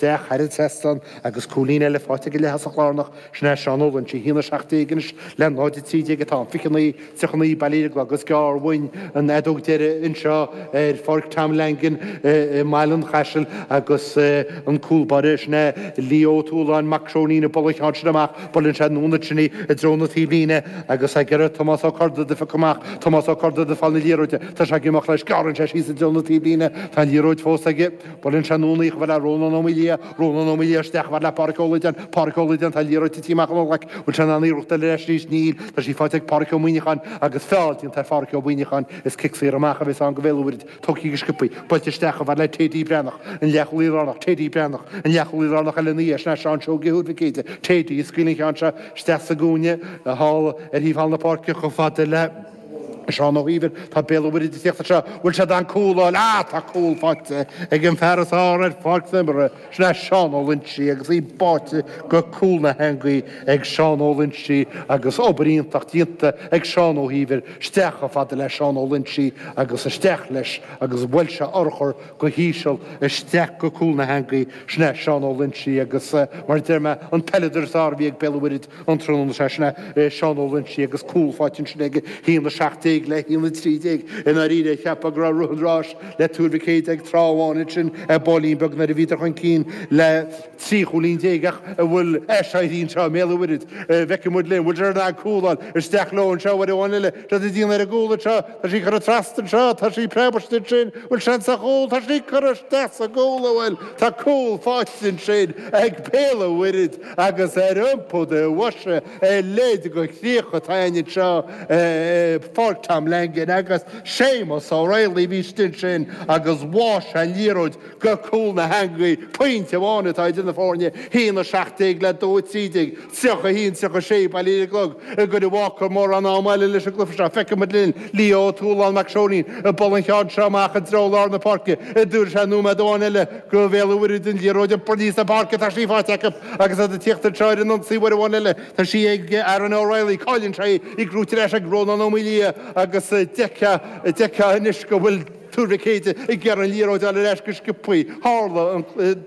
Díreach thar an trasnán agus cúilín eile faighte ag an leath-thosach lárnach, sin é Seán Ó Loinsigh, 1 17 anois le 0 13 atá an 29, 39 bailithe ar an gclog. Is gearr uainn an fheadóg deiridh anseo ar Pháirc Tom Langan i mBaile an Chaisil agus an cúl báire, sin é Leo Ó Tualáin, Mac Seoinín, ag bualadh an cheann sin amach. Buaileann sé anonn ansin i dtreo na taobhlíne agus ag iarraidh Tomás Ó Corrduibh a phiocadh amach. Tomás Ó Corrduibh ag fáil na liathróide. Tá sé ag imeacht leis. Gearrann sé síos i dtreo na taobhlíne. Tá an liathróid fós aige. Bhuel, san ionsaí uair amháin eile, Rónán Ó Maolaodha, Rónán Ó Maolaodha isteach chomh fada le Pádraic Ó Laighin, Pádraic Ó Laighin, tá an liathróid titithe amach ón nglaic, bhfuil sé in ann iarracht eile leis, níos, níl, tá sí faighte ag Pádraic Ó Muíneacháin agus feall déanta ar Phádraic Ó Muíneacháin is cic saor amach a bhéas ann do Bhéal an Mhuirthead, tógthaí go sciobthaí, buailte isteach chomh fada le Teddy Breathnach, an leath-chúl lárnach, Teddy Breathnach, an leath-chúl lárnach eile ina dhiaidh sin ea Seán Seoige Thuar Mhic Éide, Teddy ag scaoileadh an cheann seo isteach sa gcúinne, thall, ar thaobh thall na páirce, chomh fada le. Seán Ó hÍomhair, tá Béal an Mhuirthead ag tíocht anseo, bhfuil siad in ann cúl a fháil? Ah, tá cúl faighte ag an fear is fhearr ar pháirc na h-imeartha, sin é Seán Ó Loinsigh agus í báite go cúl na heangaí ag Seán Ó Loinsigh agus obair iontach déanta ag Seán Ó hÍomhair, isteach chomh fada le Seán Ó Loinsigh agus isteach leis agus bhuail sé urchar go h-íseal isteach go cúl na heangaí, sin é Seán Ó Loinsigh agus mar a deir mé, an peileadóir is fhearr a bhí ag Béal an Mhuirthead. an tráthnóna seo sin é Seán Ó Loinsigh agus cúl faighte ansin aige 1:17 le 1:13 i ndáiríre cheapfá go raibh rith an ráis le Tuar Mhic Éide ag tráth amháin ansin ar baillín beag nuair a bhíodar chun cinn le trí chúilín déag ach an bhfuil aiséirí anseo i mBéal an Mhuirthead feicfidh muid linn bhfuil siad in ann cúl a fháil isteach leo anseo uair amháin eile is iad ag déanamh ar an gcúl anseo tá sí curtha trasna anseo tá sí ag preabadh istigh ansin bhfuil seans ar chúl tá sí curtha isteach sa gcúl a bhfuil tá cúl faighte ansin ag Béal an Mhuirthead Agus ar iompú do bhoise a leithéid de chríoch atá againn anseo ar Pháirc Tom Langan agus Séamus Ó Raghallaigh a bhí istigh ansin agus bháigh sé an liathróid go cúl na heangaí. Pointe amháin atá idir na foirne, haon a seacht déag le dó a trí déag, tríocha a haon, tríocha a sé, bailithe ar an gclog agus ní bhacfar mórán ama eile leis an gcluiche seo. Feicfidh muid linn Leo Ó Tualáin, Mac Seoinín, ag bualadh an cheann seo amach i dtreo lár na páirce. Ar dúirt sé nóiméad amháin eile? Do Bhéal an Mhuirthead an liathróid a bhualadh aníos an pháirc, tá sí faighte acu agus iad ag tíocht ar threoir an ionsaí uair amháin eile. Tá sí ag Aaron O'Reilly. Cailleann sé í, curtha ar ais ag Rónán Ó Maolaodha agus deirtear anois go bhfuil Tuar Mhic Éide ag iarraidh an liathróid a fháil ar ais go sciobthaí. Tharla an.